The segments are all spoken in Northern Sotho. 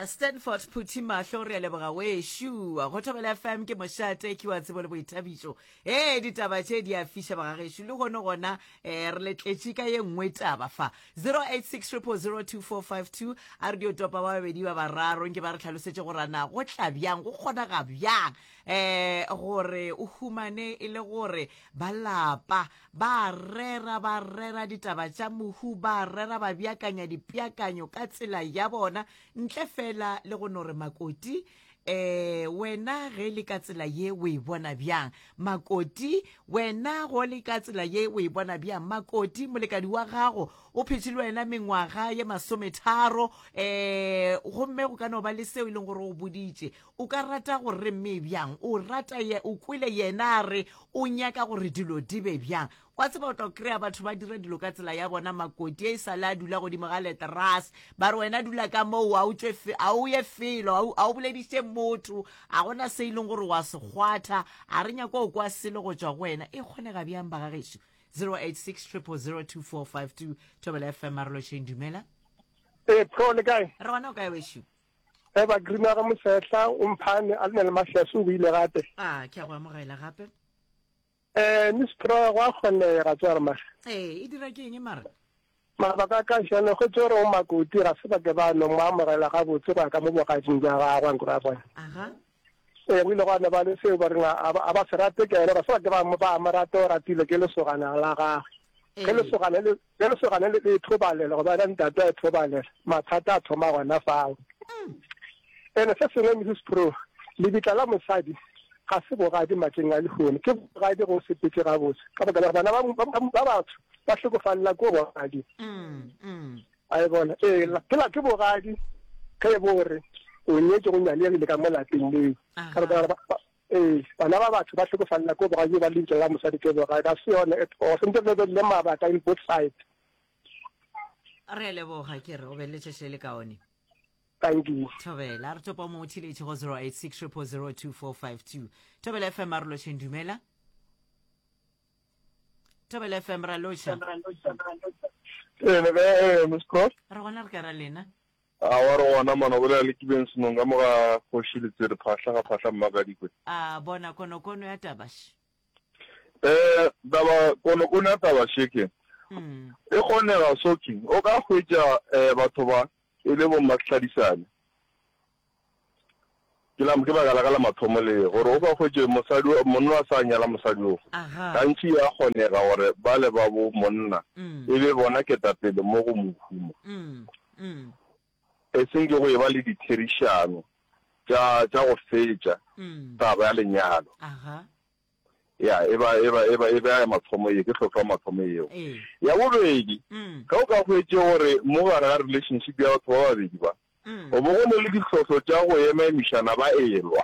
stanford phuthi mahlo re a leboga wešua go thobela fm ke mošate ke wa tsebo le boithabišo e ditaba tše di a fiša bagagešu le gone gona um re letletše ka ye nngwe taba fa 0860002452 a re dio topa ba babedi ba bararo nke ba re tlhalosetše gorana go tla bjang go kgonaga bjang um gore o humane e le gore ba lapa Ba a rera, ba rera ditaba tša mohu, ba a rera ba beakanya dipeakanyo ka tsela ya bona, ntle fela le go no re Makoti, um wena ge le ka tsela ye o e bona bjang? Makoti, wena go le ka tsela ye o e bona bjang? Makoti, molekadi wa gago o phetše le wena mengwaga ye masometharo, um gomme go ka no ba le seo e leng gore o boditše. O ka rata go re mme bjang? O rata ye, o kwele yena a re o nyaka gore dilo di be bjang. Wa tseba o tlo kry-a batho ba dira dilo ka tsela ya bona, makoti e sale a dula godimo ga leterase, ba re wena dula ka moo, a o tšwe fe, a o ye felo, a o- a o bolediše motho, a gona se e leng gore wa se kgwatha, a re nyako o kwa selo go tšwa go wena. E kgonega bjang ba ga gešo? 086 000 2452 Thobela FM Marolotšheng, dumela. Ee, pro le kae? Re gona o kae wešo? Ge ba grima ge mosehla o mphane a le le mafease o buile gape. Ah, ke a go amogela gape. Eh, Miss Pro go a kgonega ga tswa re mara. Eh, e dira ke eng mara? Mabaka ka shano go tsore o makoti ga se ba ke ba no mo amogela ga botse go ka mo bogatsing ja ga gwa nkura bona. Aha. Ee, go ile gwa no ba le seo ba reng a ba, a ba se rate ke ene, basadi ba mo ba mo rate o ratile ke lesogana la gagwe. Ge Ee. lesogana le ge lesogana le le thobalela goba ena ntate a e thobalela, mathata a thoma gona fao. Ene se sengwe Mrs Sproul, lebitla la mosadi ga se bogadi matleng a lehono, ke bogadi go sepetse gabotse ka baka la gore bana ba ba- ba- ba batsho ba hlokofalela ko bogadi. Mm, mm. A e bona, ee, ke la ke bogadi ge e bo gore o nyetše go nyaleyagile ka mo lapeng leo. Ka baka la ba, ee, bana ba batho ba hlokofalela ko bogadi ba lebitso la mosadi ke bogadi, ga se yone at all. Sentse re be le mabaka in both sides. Re a leboga, ke re o be le letšatši le le kaone. Thank you. Thobela, re topa o mongwe theletše go 086 000 2452. Thobela FM a re lotšheng, dumela. thobele fm ra loša ee le kae eh, miss cross re gona re ka ra lena a wa re gona mana bolela le kibeng senong ka moga kgoši letsere phahla ga phahla mmakadikwe a bona konokono ya tabaše eh taba konokono ya tabaše ke hmm. e kgonega soking o ka hwetša um batho ba e le bomatlhadisane Ke la, ke baka la ka la mathomo le gore o ka hwetše mosadi, o- monna a sa nyala mosadi o. Aha. Gantši ya kgonega gore ba le ba bo monna Mm. e be bona ketapele mo go mohumo, Mm. Mm. e seng ke go e ba le ditherišano tša tša go fetša Mm. taba ya lenyalo. Aha. ya e ba e ba e ba e ba ya mathomo ye ke hlotlo ya mathomo yeo ya bobedi mm. ge o ka hwetše gore mo gare ga relationship ya batho ba babedi ba mm. o bo go ne le ditlhohlo tša go ema emišana ba elwa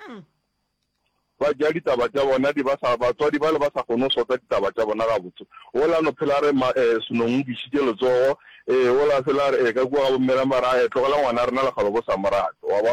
mm. ba ja ditaba tša bona di ba sa batswadi ba le ba sa kgone go sota ditaba tša bona ga botse o la no phela re ma eh, senong dišitše letsogo eh o la phela re eh, ka kua ga bommela mara eh, tlogela ngwana rena lekgalo bo sa morato wa ba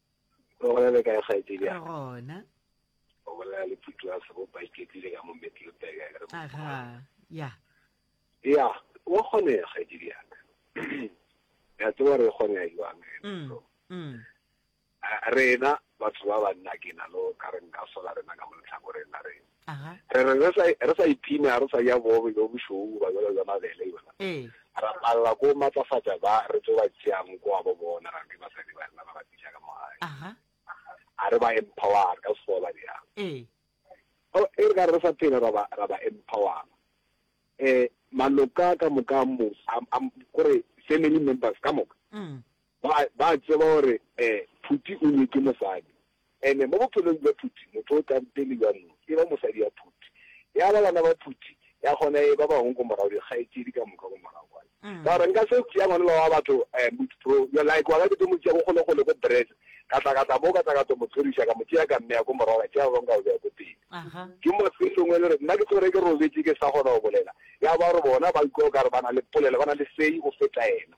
o gona le kae kgaetsedi ya gona o bolela le phutu wa sego ba iketlile ka mo metlelopeka ya aga ya ya wa gone ya kgaetsedi ya ka ya tseba re gone ya yuang mm, mm. rena batho ba banna ke na lo ka re nka sola rena ka mo letlhakoreng la rena Aha. Re re re sa, re sa iphine, ga re sa ja boobe bjo bošweu goba bjalo bja mabele, eupša Ee. ra palela ke go matlafatša ba re tlo ba tšeang ko gabo bona, ra be basadi ba rena ra ba tliša ka mo gae. Aha. A re ba empowara ka Sekgowa ba bjang. Ee. Oh, e re ka re re sa phela ra ba, ra ba empowara. Eh, maloka ka moka a mo, a, a, kore family members ka moka, Mm. Ba, ba a tseba gore, eh, Phuti o nyetšwe mosadi. And mo bophelong bja Phuti, motho o tla pele bja mo, e ba mosadi ya Phuti. Ya ba bana ba Phuti, ya kgona e ba bangwe ko morago, dikgaetšedi ka moka ko morago kwane. Ka gore nka se tšea ngwanela wa batho, eh, Mut Bro, yo like wa ka ke tlo mo tšea ko kgolekgole ko Brits, ka tla, ka tla mo, ka tla ka tlo mo tlhoriša, ka mo tšea ka mmeya ko morago, ka tšea ba bangwe ka ba beya ko pele. Aha. Ke mo se sengwe le gore, nna ke tsogere ke robetše ke sa kgona go bolela. Ya ba gore bona ba utlwa o ka re ba na le polelo, ba na le say go feta yena.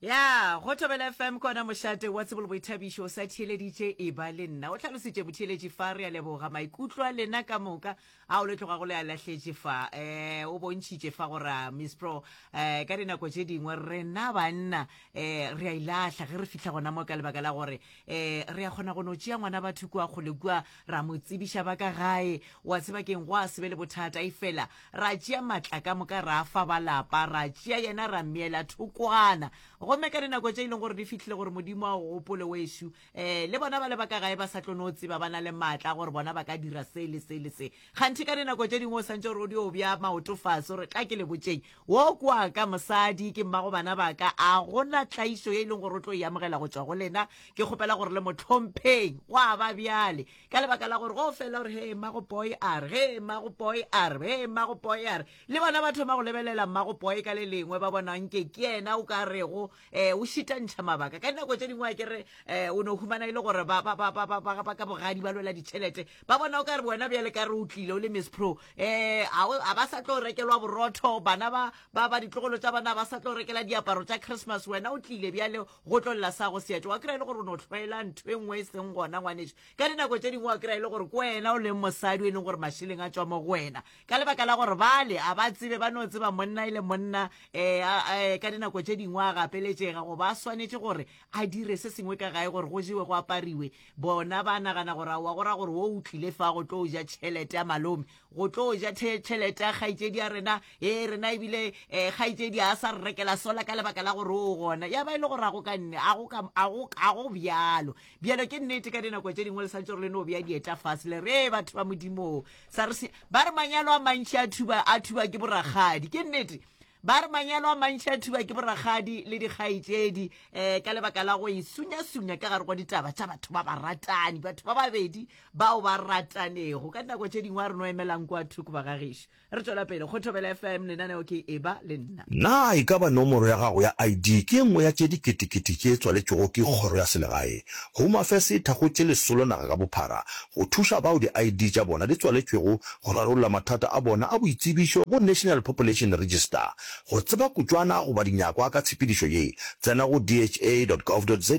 Ya, go Thobela FM ke ona mošate wa tsebo le boithabišo o sa theeleditše e ba le nna, o hlalositše motheeletši fa re a leboga maikutlo a lena ka moka ao le tlogago le a lahletše fa. Um o bontšhitše fa gore a Miss Pro um ka dinako tše dingwe rena banna um re a ilahla ge re fihla gona mo ka lebaka la gore um re a kgona go no tšea ngwana batho kua kgole kua ra mo tsebiša ba ka gae wa tseba keng go a sebe le bothata e fela ra tšea matla ka moka ra fa ba lapa ra tšea yena ra meela thokwana gomme ka dinako tše e leng gore di fihlile gore modimo a o gopole wešu um eh, le bona ba le ba ka gae ba sa tlo no tseba ba na le maatla gore bona ba ka dira se le se le se kganthe ka dinako tše dingwe o swantse gore o di o bja maoto fase gore tla ke le botseng Wo ke wa ka, mosadi ke mmago bana ba ka. A go na tlaišo ye e leng gore o tlo e amogela go tšwa go lena? Ke kgopela gore le mo hlompheng. Gwa ba bjale. Ka lebaka la gore go fela gore, Hee, mmago Poi a re, hee, mmago Poi a re, hee, mmago Poi a re. Le bona ba thoma go lebelela mmago Poi ka le lengwe, ba bona nke ke yena o ka rego um o šitantšha mabaka ka dinako tše dingwe a kere um eh, o no humana e le gore ba ka bogadi ba lwela ditšhelete ba bona o ka re wena bjale ka re o tlile o le miss pro um eh, a ba sa tlo rekelwa borotho bana ba ditlogolo tša bana ba sa tlo rekela diaparo tša christmas wena o tlile bjale go tlolela sa go seatše wa kry e le gore o no tlhoela ntho e nngwe e seng gona ngwaneso ka dinako tse dingwe wa kry e le gore ke wena o leng mosadi o e leng gore mašeleng a tswa mo go wena ka lebaka la gore bale a ba tsebe ba no tseba monna e le monna um ka dinako tše dingwe a gapeletšega go ba swanetše gore a dire se sengwe ka gae gore go jewe go apariwe bona ba nagana gore aowa go ra gore wo o tlile fa go tlo ja tšhelete ya malome go tlo ja tšhelete ya kgaitsedi ya rena e rena ebile um kgaitsedi a sa re rekela sola ka lebaka la gore o gona ya ba e le gore a go ka nne a go bjalo bjalo ke nnete ka dinako tše dingwe le santse gore le no bja dieta fase le re batho ba modimo SARS ba re manyalo a mantši a thuba a thuba ke borakgadi ke nnete ba re manyalo a mantši a thuba ke borakgadi le dikgaetšedi um ka lebaka la go e sunyasunya ka gare go ditaba tša batho ba ba ratani batho ba babedi bao ba ratanego ka dinako tše dingwe a re no emelang kwa thoko ba gagešu re tswela pele go thobela fm lenaneo ke e ba le nna Na e ka ba nomoro ya gago ya ID ke e nngwe ya tše diketekete tše tswaletšwego ke kgoro ya selegae? Home Affairs e thakgotše lesolo naga ka bophara go thuša bao di-ID tša bona di tswaletšwego go rarolla mathata a bona a boitsebišo go National Population Register. Go tseba kutšwana goba dinyakwa ka tshepedišo ye, tsena go dha.gov.za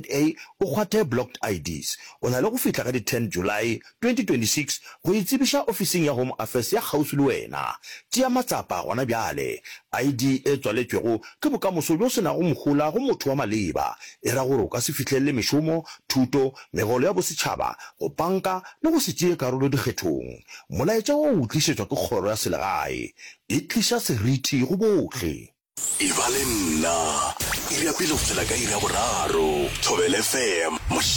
o kgwathe Blocked IDs. O na le go fihla ka di 10 Julae 2026 go e tsebiša ofising ya Home Affairs ya kgauswi le wena. Tšea matsapa gona bjale. ID e tswaletšwego ke bokamoso bjo se nago mohola go motho wa maleba, e ra gore o ka se fihlelele mešomo, thuto, megolo ya bosetšhaba, go panka le go se tšee karolo dikgethong. Molaetša wo o tlišetšwa ke kgoro ya selegae. E tliša seriti go bohle. Eba le nna, iri ya pele go fihlela ka iri ya boraro. Thobelfm.